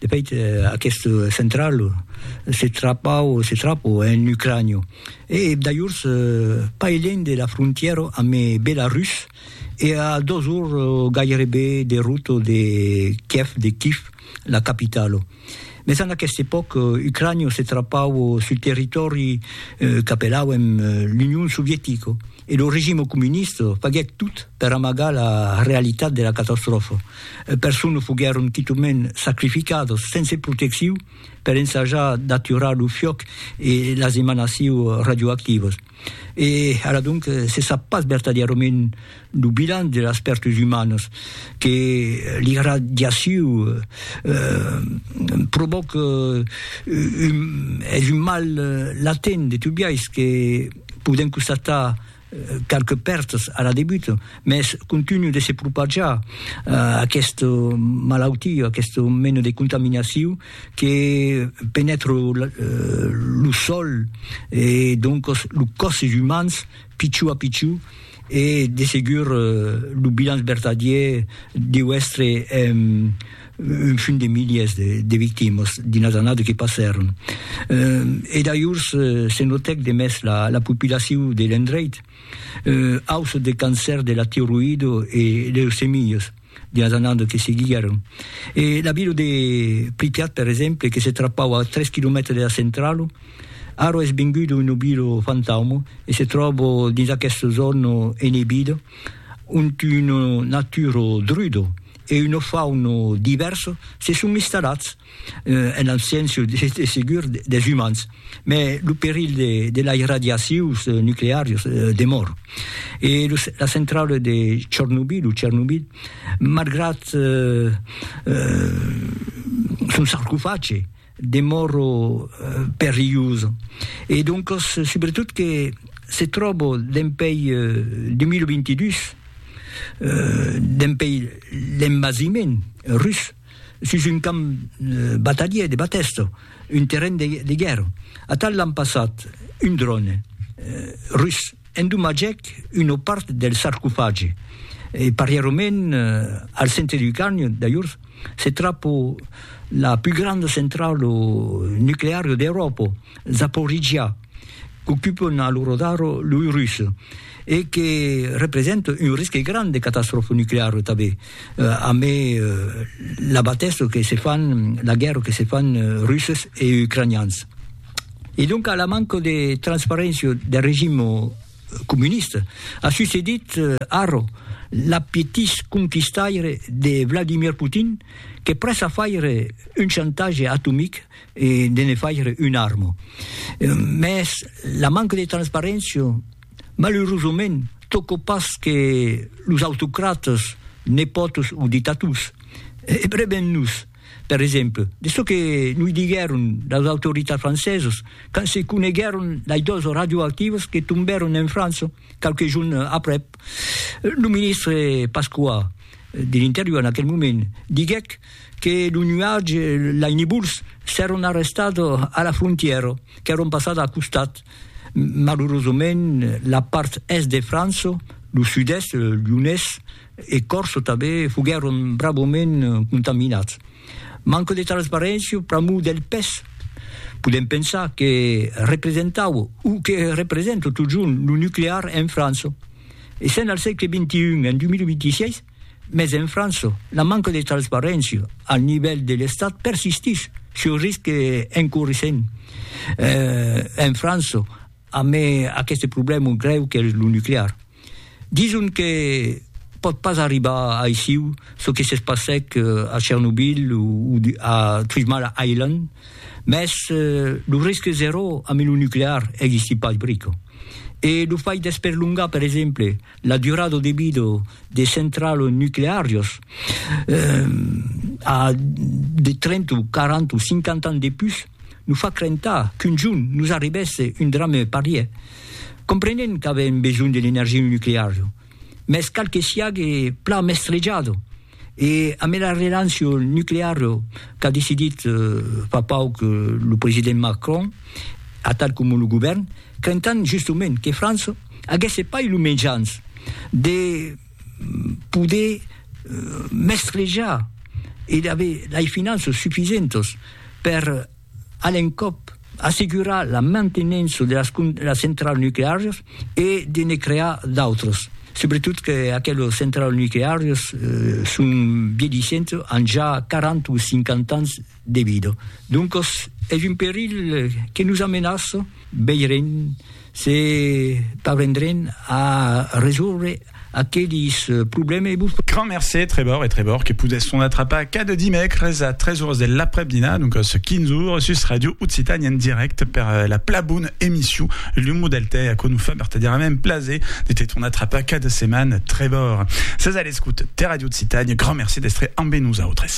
De fait, aquest central se trapau, se trapo, en Ucrània, e d'ajors pas elènh de la frontièra amb Belarus e a dos ors gairebe de rota de Kiev, de Kif, la capitala. Mès en aquesta epòca, Ucrània se trapau sul territòri qu'apelauen l'Union Sovietica. e lo regime comunista faguèt tot per amagar la realitat de la catastròfa. E personnes foguèron quitament sacrificadas sense protecciu per ensajar d'aturar lo fiòc e las emanaciu radioactivas. E ara donc se sap pas vertadièrament lo bilan de las pèrtas umanas que l'irradiaciu provòca. Es un mal latent de tot biais que. Podèm constatar qualques pèrtas a la debut, mès continu de se propajar aqueste malautiu, aqueste mena de contaminaciu que penètra lo sòl e doncas los còsses umans pichó a pichó e de segur lo bilanç vertadièr deu èstre un fin de miliers de victimas dins las annadas que passèron, e dajors se notèc de mès la popilacion de l'endreit, auçat de cancèr de la tiroïda e leucemias dins las annadas que seguiguèron. E la vila de Pripyat, per exemple, que se trapava a tres quilomètres de la centrala, ara es venguda una vila fantauma e se tròba dins aquesta zòna enebida ont una natura druda, e una fauna divèrsa se son instalats en abséncia, de segur, des umans, mai lo perilh de las irradiacions nucleàrias demòra. E la centrala de Chornobyl, o Chernobyl, malgrat son sarcofage, demòro perilhosa e doncas subretot que se tròbo dempèi 2022 dempèi l'envasiment rus sus un camp batalhier de Batèsta, un terren de guèrra. Atal l'an passat un dròne rus endomatgèc una part del sarcofagi e parièrament al centre du carn, dajors, Se trapò la pus granda centralo nuclearo d'Euròpa, Zaporizhia, qu'ocupan a l'ora d'ara loi Russes e que representa un risque grand de catastròfa nucleara tanben, amé la batèssa que se fan, la guèrra que se fan Russes e Ucranians. E donc a la manca de transparéncia del regim, comuniste, a succedit arro l'apetís conquistaire de Vladimir Putin que prèssa faire un chantatge atomic e de ne faire un arma. Mès la manca de transparéncia, malurosament, tòca pas que los autocratas, nepòtos o dictators. Ebreven-nos! Per exemple, de çò que noi diguèron las autoritats francesas quand se coneguèron lei dos radioactivas que tombèron en França qualques jorns aprèp, lo ministre Pasqua de l'Interior en aquel moment diguèc que lo nuatge, lei nibols, s'èron arrestats a la frontièra, qu'èron passats a costat. Malurosament, la part Èst de França, lo Sud-Èst, Lyonés, e Corso tanben foguèron bravament contaminats. Manco de transparéncia pr'amor del pes. Podèm pensar que representava, o que representa totjorn lo nuclear en França. E sèn al sègle xxi, en 2026, mès en França la manca de transparéncia al nivèl de l'Estat persistís, se risque en corrissent en França amé aqueste problèma grèu qu'es lo nuclear. Dison que pòt pas arribar aissiu çò que s'es passèc a Chernobyl o a Three Mile Island, mès lo risque zèro amb lo nuclear existí pas brico. E lo fai d'esperlongar, per exemple, la durada de vida de centrals nucleàrios a de 30 o 40 o 50 ans de pus, nos fa crentar qu'un jorn nos arribèsse un drame parièr. Comprenent qu'avèm besonh de l'energia nucleara, mès cal que siague plan mestrejada, e amé la relancia nucleara qu'a decidit fa pauc lo president Macron, atal coma lo govèrn, crentant justement que França aguèsse pas lo mejans de poder mestrejar e d'aver lei finanças sufisentas per a l'encòp, assegurar la mantenença de las las centrals nucleàrias e de ne crear d'autras, subretot que aquelas centrals nucleàrias son vielhissentas, an ja 40 o 50 ans de vida. Doncas es un perilh que nos amenaça, veirem. Se parvendrem a resòrre aquelis problèmes e vos. Grand mercé, Trevor e Trevor que podèsson atrapar cada dimècres a 3 oras de l'aprèp-dinar, doncas 15 oras, sus Ràdio Occitània en dirècte per la pla bona emission L'Humo del Tè, aquò nos fa vertadièrament plaser de te tornar trapar cada setmana, Trevor. Sètz a l'escota de Ràdio Occitània, grand mercé d'èstre ambe nosautres.